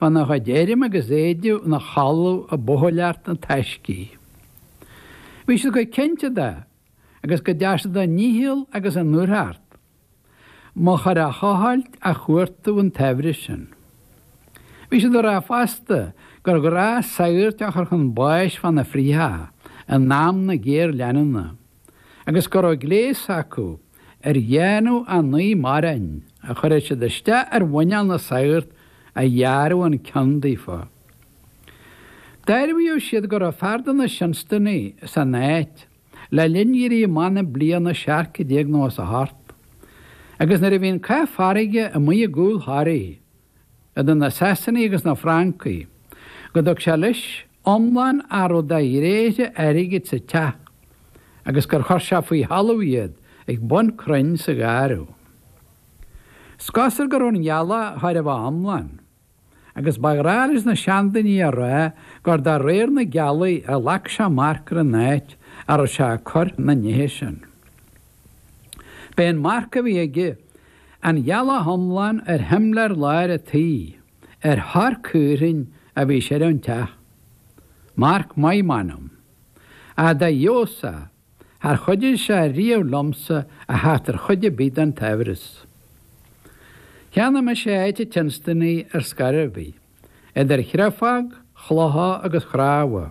Faoina chuid airm agus éididh ina chodladh ag buachailleacht na taisce. Bhí siad chomh cinnte de agus go dtearn siad a ndícheall agus a ndúthracht an machaire a thochailt a chuartú an tsaibhris sin. Bhí siad a rá fosta gur ghnách sagairt a chur chun báis fá na frítheacha i n-am na géarleanúna. agus go raibh gléas acu ar dhéanamh a naoi maireann a chuireadh siad isteach ar mhuineál na sagart a ghearradh an ceann daofa. Dearbhaíodh siad go raibh fear de na Seanstanaí san áit le linn éirí amach na bliana 1798 agus nuair a bhí an cath farraige amuigh i gcúl Thoraí, idir na Sasanaigh agus na Francaigh, go dtug sé leis iomlán a raibh de ghréithe airgid sa teach agus gur chuir sé faoi thalamh iad ag bun crainn sa gharradh. Is cosúil go raibh an ghealach chóir a bheith iomlán, agus ba ghnách leis na seandaoine a rá gur de réir na gealaí a ghlac sé marc ar an áit a raibh sé ag cur na nithe sin. B'é an marc a bhí aige An ghealach iomlán ar shimléar láir an tí, ar chrann caorthainn a bhí siar ón teach. Marc maith m'anam. Ach dá fheabhas é, char chuidigh sé riamh liomsa a theacht ar chuid ar bith den tsaibhreas. Cheannaigh mise áit an tSeanstanaigh ar scor ar bith. idir chréafóg, chlocha agus chnámha.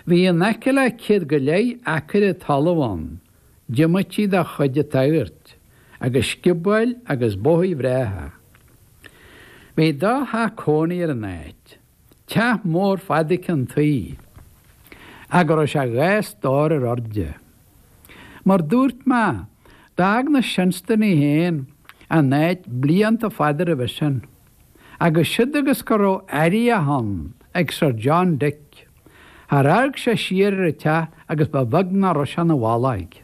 Bhí in aice le céad go leith acaire talamh ann, diomaite dá chuid a thabhairt, agus sciobóil agus bóithigh bhreátha. Bhí dhá theach cónaí ar an áit, teach mór fada ceann tuí, ag a raibh sé dhá stór ar airde. Mar dúirt mé, d'fhág na Seanstanaí féin an áit blianta fada roimhe sin. agus siúd agus go raibh airíoch ann ag Sir John Dick, char amharc sé siar ar an teach agus ba bheag nach raibh sé ina bhallóig.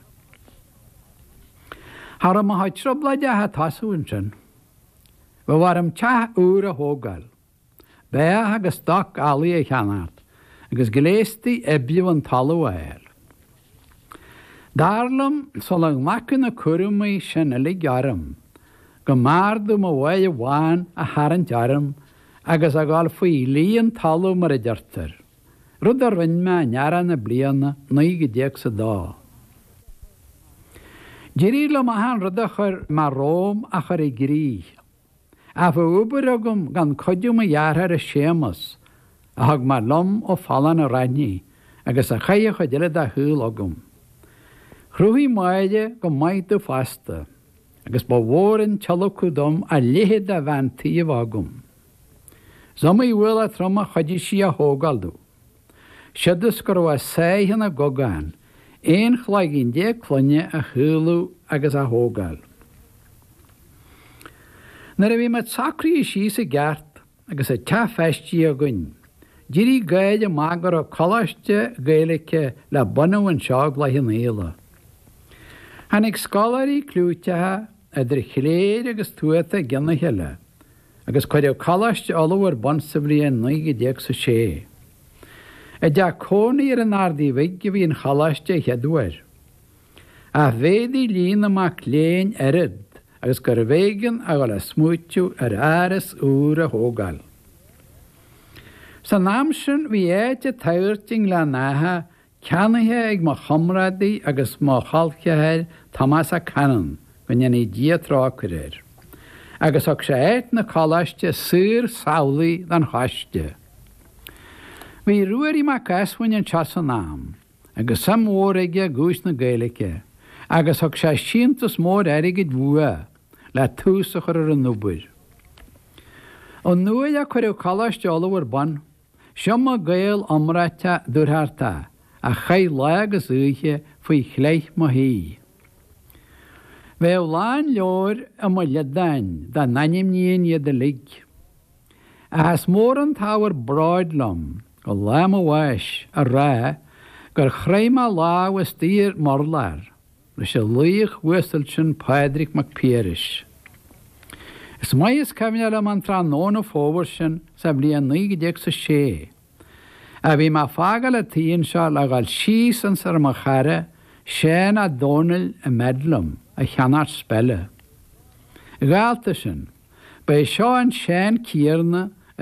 Cha raibh mo sháith trioblóide ach ag tosú ansin. Bheadh orm teach úr a thógáil. Beathach agus stoc eallaigh a cheannacht agus gléastaí oibriú an talamh a fháil. Dar liom, sula nglacfainn na cúraimí sin uilig orm, go mb'fhearr dom uaigh amháin a tharraingt orm agus a dhul faoi luí an talamh mar a deirtear, rud a rinn mé in earrach na bliana naoi gcéad déag 's a dó. D'éirigh liom achan rud a chuir mé romham a chur i gcrích. Ach bheadh obair agam gan cuidiú mo dhearthára Séamas, a thug mé liom ó Phollán a' Raithní agus a chaith an chuid eile dá shaol agam. Chruthaigh Máire go maith domh fosta, agus ba mhór an tíolacadh dom a leithéid de bhean tí a bheith agam. Is iomaí ualach trom a chuidigh sí a thógáil domh. Siúd is go raibh a sáith ina gogán, aon chloigeann déag clainne a shaolú agus a thógáil. Nuair a bhí muid socraithe síos i gceart agus an teach feistithe againn, d'éirigh gáir amach go raibh coláiste Gaeilice le bunadh anseo i gCloich Cheann Fhaola. Tháinig scoláirí cliúiteacha, idir chléir agus tuata i gceann a chéile. agus cuireadh Coláiste Uladh ar bun sa bhliain 1906. I dteach cónaí ar an Ardaí Bhig a bhí an choláiste an chéad uair. Ach mhéadaigh líon na mac léinn oiread agus gurbh éigean a dhul a smaoiteamh ar áras úr a thógáil. San am sin bhí áit an tsagairt i nGleann Átha Ceannaithe ag mo chomrádaí agus mo cholceathair Tomás Ó Canainn, go ndéanaí Dia trócaire air, agus thug sé áit na coláiste saor samhlaidh don choiste. Bhí Ruairí Mac Easmuinn anseo san am agus suim mhór aige i gcúis na Gaeilge agus thug sé síntiús mór airgid uaidh le tús a chur ar an obair. Ón uair a cuireadh Coláiste Uladh ar bun. Is iomaí Gael iomráiteach dúthrachtach a chaith lá agus oíche faoi chleith mo thí. Bheadh lán leabhair i mo liodán dá n-ainmnínn iad uilig. Ach is mór an t-ábhar bróid liom go lá mo bháis a rá gur chroith mé lámh istigh ar m'urlár, leis an laoch uasal sin Pádraig Mac Piarais. Is maith is cuimhin liom an tráthnóna fómhair sin sa bhliain 1906. a bhí mé ag fágáil an tí anseo le dhul síos ionsar mo chara Seán Ó Dónaill i mBedlam a cheannacht speile. Dhálta sin, ba é seo an Seán céanna a